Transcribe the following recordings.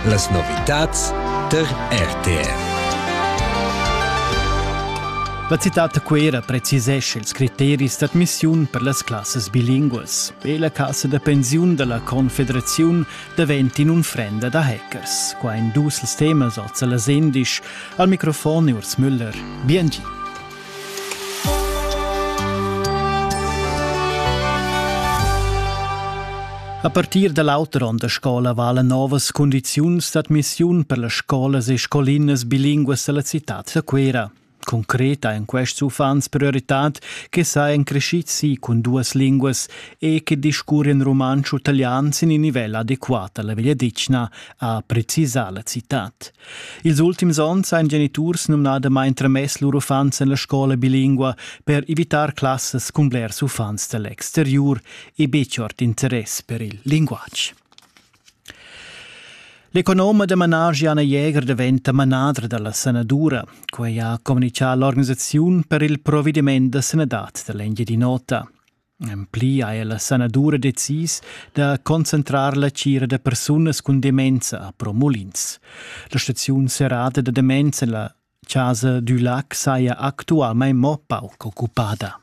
Las novitads tar RTR. La citad da Cuera precisescha ils criteris d'admissiun per las classas bilinguas e la cassa da pensiun da la Confederaziun davent in unfrenda da hackers. Qua ein dus temas oz alla Sendisch. Al microfon Urs Müller. Bien gi. A partir da l'auter onn da scola valan novas cundiziuns d'admissiun per las scolas e scolinas bilinguas dalla citad da Cuera. Concreta ein quests uffants prioritad che sajan crescids si cun duas linguas e che discurren rumantsch u italian sin in nivel adequat alla vegliadetgna, ha precisà la citad. Ils ultims onns han geniturs numnadamain tramess lur uffants en la scola bilingua per evitar classas cun blers uffants da l'exteriur e betg ord interess per il linguatg. L'economa da managi Anna Jäger daventa manadra dalla sanadura. Quei ha communicà l'organisaziun per il provediment da sanadad da l'Engiadin'Ota. En pli ha ella sanadura decis da concentrar la tgira da persunas cun demenza a Pro Mulins. La staziun serrata da demenza en la Casa du Lac saja actualmain mo pauc occupada.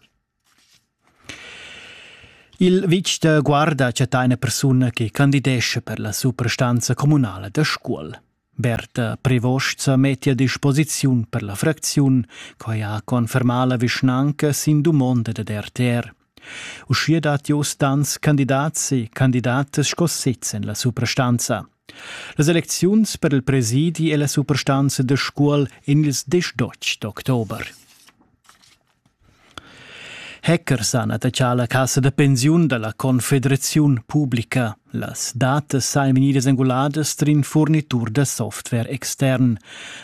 Il vitg da guarda chatta ina persuna che candidesce per la suprastanza communala da Scuol. Berta Prevost metti a disposiziun per la fracziun, quai ha confermà la vischnanca sin dumonda dad RTR. Uschia dat Jost Danz candidats e candidatas sco sez en la suprastanza. Las elecziuns per il presidi è la suprastanza da Scuol en ils 18 d'october. Hecker s'ha attachà alla cassa da pensiun da la Confederaziun publica. Las datas sajan vegnidas enguladas trin furnitur da software extern.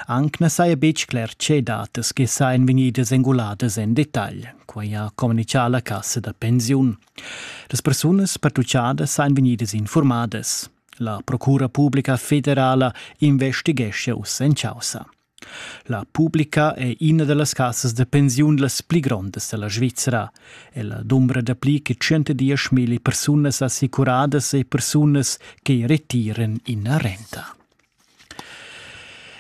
Anc na saja betg cler tge datas che sajan vegnidas enguladas en detagl. Quai ha communitgà la cassa da pensiun. Las persunas pertuchadas sajan vegnidas informadas. La Procura publica federala investighescha uss en chaussa. La publica è ina da las casas da pensiun las pli grondas da la Svizra. Ella dumbra dapli che tschentadisch milli persunas assicuradas e persunas che retiran ina renta.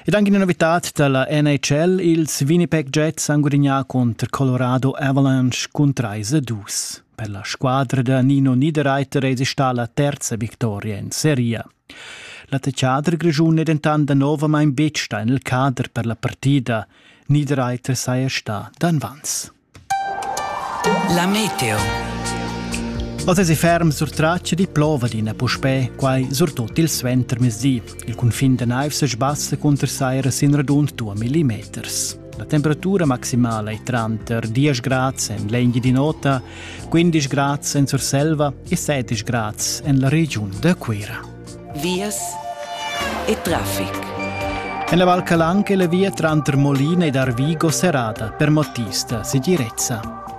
Ed anche una novità da la NHL, ils Winnipeg Jets han gudagnà contro Colorado Avalanche cun 3-2. Per la squadra da Nino Niederreiter è stata la terza vittoria in seria. L'attaccader grischun è dentant danovamain betg stà en il cader per la partida. Niederreiter saja stà danvans. La meteo. Oz è ferm sur traccia di plova d'ina puspè, quai surtut il suentermezdi. Il cunfin da naiv sa sbassa cunter saira sin radund 2 millimeters. La temperatura maximala è tranter 10 grads en l'Engiadin'Ota, 15 grads en Surselva e 16 grads en la regiun da Cuira. Vias e traffic. En la Val Calanca è la via tranter Molina ed Arvigo serrata per motivista segirezza.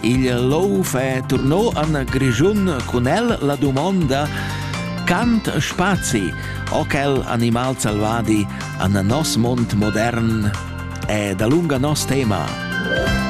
Il Louf è turnò an Grischun cun el la dumonda Cant spazi o quel animal salvadi an nos mond modern è da lunga nos tema.